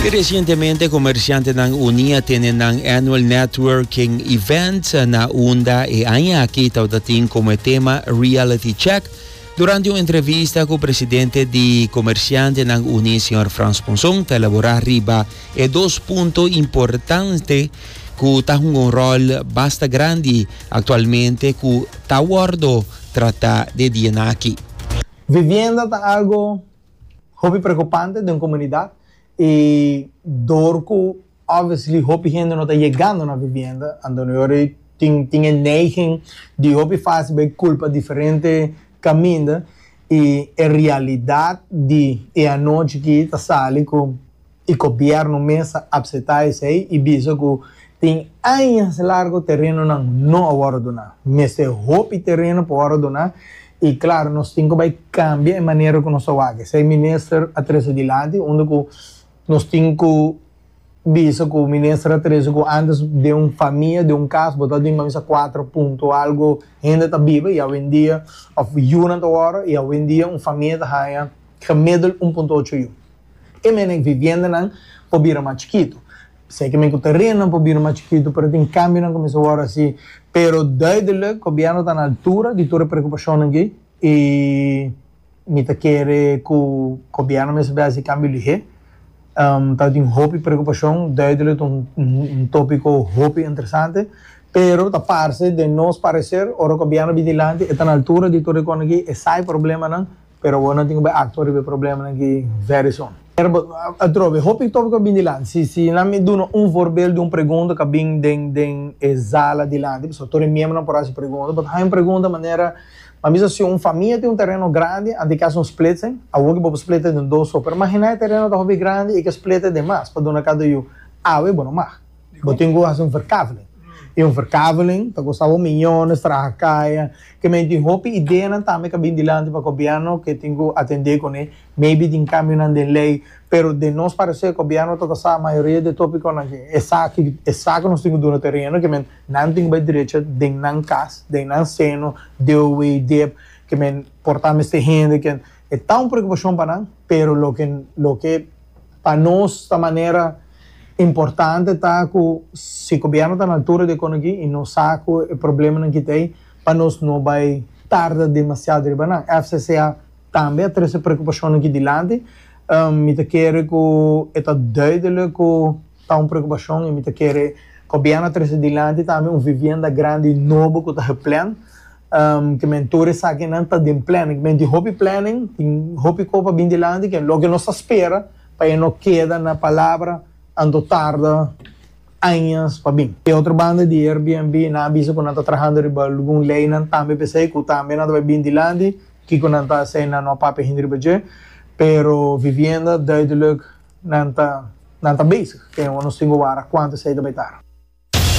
I recientemente comerciantenan uni a tene nan annual networking event na unda e aña aki tabata tin como e tema Reality Check. Durante un entrevista cu presidente di Comerciantenan Uni, señor Frans Monzon, ta elabora riba e dos punto importante cu ta hunga un rol basta grandi actualmente cu ta wordo trata de dianaki. Vivienda ta algo Hopi preokupante den komunidat i dor ku obviously hopi hende no ta yegando na vivienda, antonori tin tin e neiging di hopi fásil bai kulpa diferente kaminda i e realidat di e anochi aki ta sali ku. y cobièrnu mes a apseta esei y bisa cu tin añas largo terenonan no a worde duna. Mester hopi tereno pa worde duna y claro nos tin cu bay cambia e manera cu nos ta wak esei. Minister a trece dilanti unda cu nos tin cu bisa cu minister a trece cu antes den un famia, den un cas bo ta tin manmisa cuatro punto algo hende ta biba y awendia of yunan ta worde y awendia un famia ta haya. gemiddel un punto ocho yu. E mene cu viviendanan por bira mas chikitu. Seki mene cu terennan por bira mas chikitu, pero tin cambionan cu mester worde haci. Pero duidelijk, gobierno ta na altura di tur e preocupacionnan dje y mi ta kere cu gobierno mester bay haci cambio lihe. Tawe tin hopi preocupacion, duidelijk ta un topico hopi interesante, pero ta parce den nos parecer ora gobierno bin dilanti e ta na altura di tur e connan aki, e sa e problemanan Pero awor nan tin ku bai aktua riba e problemanan ki vèri son. Pero atrobe, hopi tòpiko a bin dilanti. Si si nan mi duna un voorbeeld di un pregunta ku a bin den den e zala dilanti, pasobra tur e miembronan por hasi pregunta, bo ta haña un pregunta manera, Mi a bisa si un famia tin un tereno grandi, anto e ke hasi un splitsen? Awor ku bo por splita den dos so, pero imaginá e tereno ta hopi grandi i ke splita den mas pa duna kada yu. Awe bo no mag. Bo tin ku hasi un verkaveling. I un verkaveling ta kosta bo miñones, traha kaya. Kemey tin hopi ideanan tambe ku a bini dilanti pa gobièrnu ku e tin ku atendé kuné. Maybe tin kambionan den lei. Pero den nos paresé, gobièrnu ta basá mayoria di e tópikonan ke esaki, esaki ku nos tin ku duna tereno, ke men nan tin ku bai drecha den nan kas, den nan seno, deoe i dep, ke men portá mester hende ke. e ta un preokupashon pa nan, pero loke loke pa nos ta manera importante ta ku si gobièrnu ta na altura di e konogí i nos sa ku e problemanan ki ta ei, pa nos no bai tarda demasiado riba nan. FCCA tambe a trese preokupashonnan ki dilanti. Mi ta kere ku e ta duidelijk ku. Ta un preokupashon y mi ta kere Gobierno a trece dilanti tambe un vivienda grandi nobo cu ta geplan, kimen tur esakinan ta den planning. Kimen tin hopi planning, tin hopi cosa pa bin dilanti cu loke nos ta spera pa e no keda na palabra anto tarda añas pa bin. Di otro banda di Airbnb nan a bisa cu nan ta trahando riba algun leynan tambe pesey cu tambe nan ta bay bin dilanti kico nan ta hacer nan no a papia hende riba dje, pero vivienda duidelijk. Nan ta, nan ta bezig. Te, nos tin go wara kuantu esei ta bai tard.